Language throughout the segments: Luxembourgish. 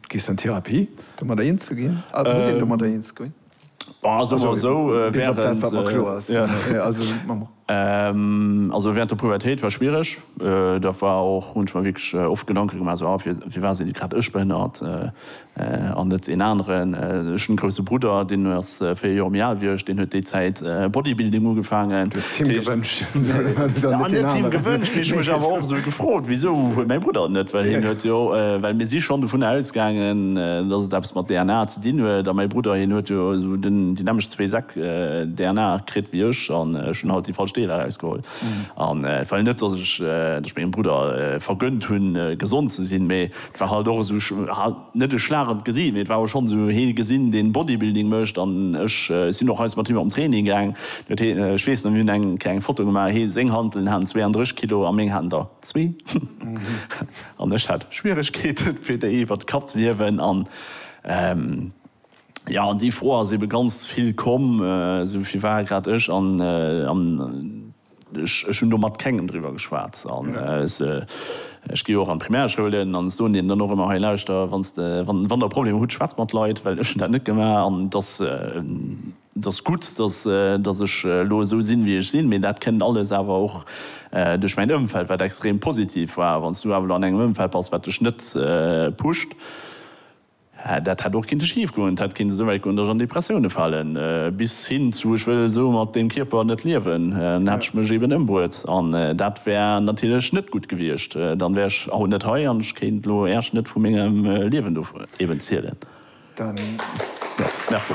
Gees an Therapie domadder eens ze ginn? Muss een domadder eens ginn? Bon, soe mer esou, während der Pubertéit war schwiereg. Da war och, hunn ech mer wierklech oft Gedanke gemaach, esou, ah, firwat sinn grad ech behënnert an net een aneren? Ech hunn e grousse Brudder, deen 4 Joer méi al wéi ech, deen huet déi Zäit Bodybuilding ugefaangen. Du hues d'Kim gewënscht. An net d'Kim gewënscht, mee ech hu mech awer och esou gefrot, wisou huet mäi Brudder et net, well hien huet jo, well mir si schonn dovunner ausgaangen, datt et eppes mat DNA ze dinn huet. A mäi Brudder, hien huet jo esou déi nämmlecht zwee Säck DNA kritt wéi ech an ech hunn halt déi falsch Deeler erausgeholl. An et war jo net, datt ech mengem Brudder vergönnt hunn, gesond ze sinn, mee et war halt och esou. net e schlagend Gesiit, mee et war och schonn esou hee gesinn, deen Bodybuilding mécht an ech sinn och eis mat him op den Training gaang. Deen huet hee, ech weess nach, mir hunn eng kleng Foto gemaach, hee seng Hanteln haten 32 Kilo a meng haten der zwee an ech hat Schwieregkeeten fir déi iwwert de Kapp ze hiewen an jo, an déi Fro ass ebe ganz vill komm, esou, firwat grad ech an. Ech hunn do mat kengem driwwer geschwat. An ech gi jo och an d'Primärschoulen an soen deenen dann och ëmmer, Hei lauschter, wann de, wann der Problemer hutt, schwätzt mat Leit, well ech hunn dat net gemaach. An et ass, et ass gutt, datt, datt ech elo esou sinn, wéi ech sinn. Mee dat kënnt alles awer och duerch mäin Ëmfeld, wat extrem positiv war. Wann s du awer elo an engem Ëmfeld bass, wat dech net pusht, Dat hätt och kinnte schief goen, et hätt kinnte sou wäit goen, datt ech an Depressioune falen, bis hin zu ech wëll esou mat deem Kierper net liewen, dann hätt ech mech eben ëmbruet an dat wär natierlech net gutt gewiescht. Dann wär ech haut net hei an ech kéint elo Äerch net vu mengem Liewen do eben zielen. Merci.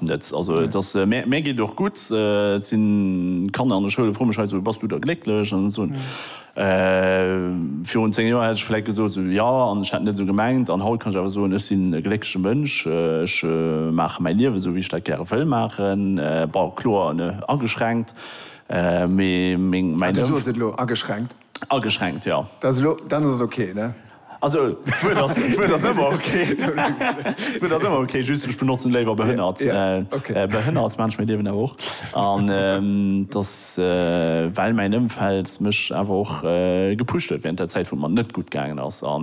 net. Also et ass mär mär geet och gutt, et sinn Kanner an der Schoul, froe mech hei esou, bass du da glécklech an esou. Virun 10 Joer hätt ech vläit gesot esou, jo an ech hätt net esou gemengt an haut kann ech awer soen, ech sinn e gléckleche Mënsch, ech maache mäi Liewen esou wéi ech dat gäre wëll maachen. Bon kloer ageschränkt, mee meng, mäin Ëmf. Du soos et elo, ageschränkt. Ageschränkt, jo. Dat ass elo, dann ass et ok, ne? Also, d'Wuert ass, d'Wuert ass ëmmer ok. D'Wuert ass ëmmer ok, just ech benotzen léiwer behënnert. Behënnert Menschen, mir liewen awer och. An et ass, well mäin Ëmfeld mech awer och gepusht huet während der Zäit, wou et mer net gutt gaangen ass. A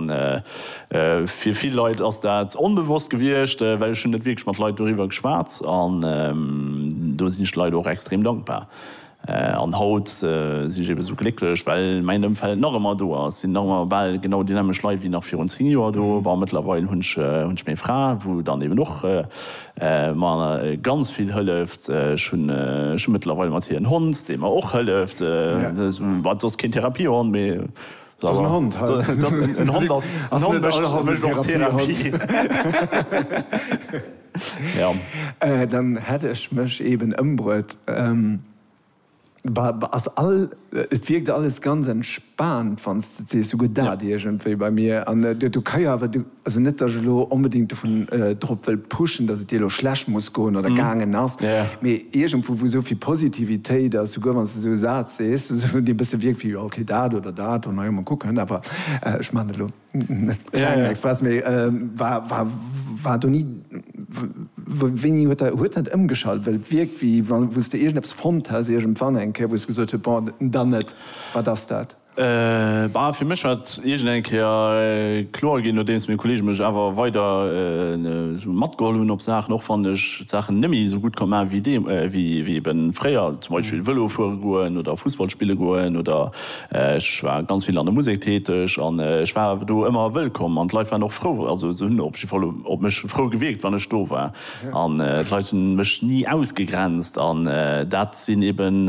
fir vill Leit ass dat onbewosst gewiescht, well ech hunn net wierklech mat Leit doriwwer geschwat. An do sinn ech de Leit och extrem dankbar. An haut sinn ech eben esou glécklech, well mäin Ëmfeld nach ëmmer do ass. Et sinn nach ëmmer bal genau déi nämmeg Leit wéi nach virun 10 Joer do. Bon, mëttlerweil hunn ech meng Fra, wou dann eben och mer ganz vill hëlleft. Ech hunn mëttlerweil mat hir en Hond, dee mer och hëlleft. Wat soss keen Therapiehond, mee en Hond, en Hond mécht och Therapie. Dann hätt ech mech eben ëmbruet. Et wierkt alles ganz entspaant, wann s de et sees. Sou gëtt dat iergendwéi bei mir. An do ka jo awer, also net, datt ech elo onbedéngt dovun drop wëll pushen, datt et dir elo schlecht muss goen oder gaangen ass, mee iergendwou, wou esou vill Positivitéit ass, souguer wann s de esou e Saz sees, esou dee e bësse wierkt wéi, jo, okay, dat oder dat, oh, na jo, mol kucken, awer ech maachen et elo. Klengen Express, mee war do ni. Wéini huet dat huet dat ëmgeschalt? Well et wierkt, wéi wa wou s de iergendeppes fonnt häss iergendwann eng Kéier, wou s de gesot hues, bon, dann net. Wat ass dat? Bah, fir mech war et iergend eng Kéier kloer ginn, nodeems meng Kolleege mech awer weider esou matgeholl hunn op Saachen, och wann ech d'Saachen net méi esou gutt konnt maachen, wéi deem wéi eben fréier, zum Beispill Vëlo fuere goen oder Fussball spille goen oder Ech war ganz vill an der Musek täteg an ech war do ëmmer wëllkomm an d'Leit waren och frou. Also se hunn op jidde Fall op mech frou gewierkt, wann ech do war. An d'Leit hunn mech ni ausgegrenzt an dat sinn eben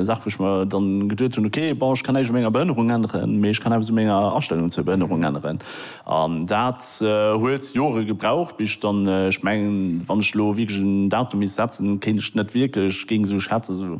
Saache wou ech mer dann geduet hunn, ok, bon ech kann näischt u menger Behënnerung änneren, mee ech kann eppes u menger Astellung zur Behënnerung änneren. An dat huet Jore gebraucht bis ech dann, ech mengen wann ech elo wierklech en Datum misst setzen, kéint ech net wierklech géing esou schätzen, esou.